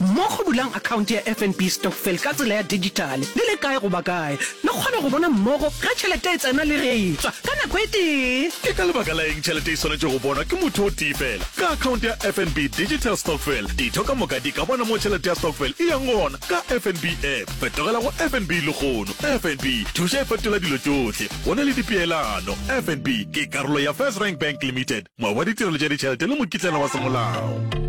Mmogo bulang akhaonte ya FNB Stokvel ka tsela ya dijithale le le kae goba kae, le kgone go bona mmogo ge tšhelete e tsena le ge e tšwa ka nako e tee. Ke ka lebaka la eng tšhelete e swanetše go bonwa ke motho o tee feela? Ka akhaonte ya FNB Digital Stokvel, ditho ka moka di ka bona moo tšhelete ya stokvel e yang gona ka FNB App. Fetogela go FNB lehono. FNB Thuša e fetola dilo tšohle. Go na le dipeelano. FNB ke karolo ya FirstRand Bank Limited, moabi wa ditirelo tša ditšhelete le mokitlana wa semolao.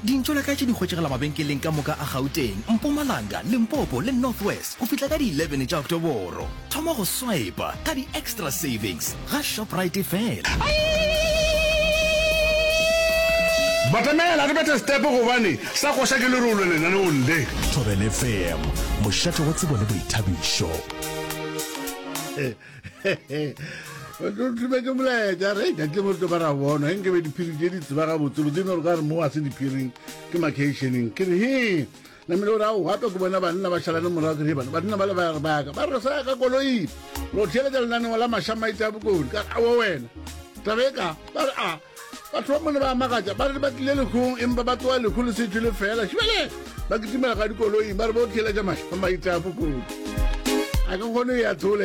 Dintšo la ka tše di hwetšegela mabenkeleng ka moka a Gauteng, Mpumalanga, Limpopo le North West go fihla ka di 11 tša Oktoboro. Thoma go swipa ka di Extra Savings ga Shoprite fela. Batamela re bethe setepo gobane sa koša ke lerole lenaneong le. Thobelfm, mošate wa tsebo le boithabišo. thube ke molaetša re ka ke moto ba ra bona eng ke be diphiri tše di tseba gabotsebotse no re ka re mo a se diphiring ke macationeng ke re he namele o ra o gape ke bona banna ba šalane morago ke re bana banna ba le ba re baka ba re sa ka koloi lo theeletša lenaneo la mašamaite a bokone ka awo wena tabe ka ba re a batho ba mone ba magatša ba re ba tlile lekgong empa ba tloa lekgo le setho le fela šebele ba kitimela ga dikoloing ba re bo theeletša mašamaite a bokone a ka kgone ya thola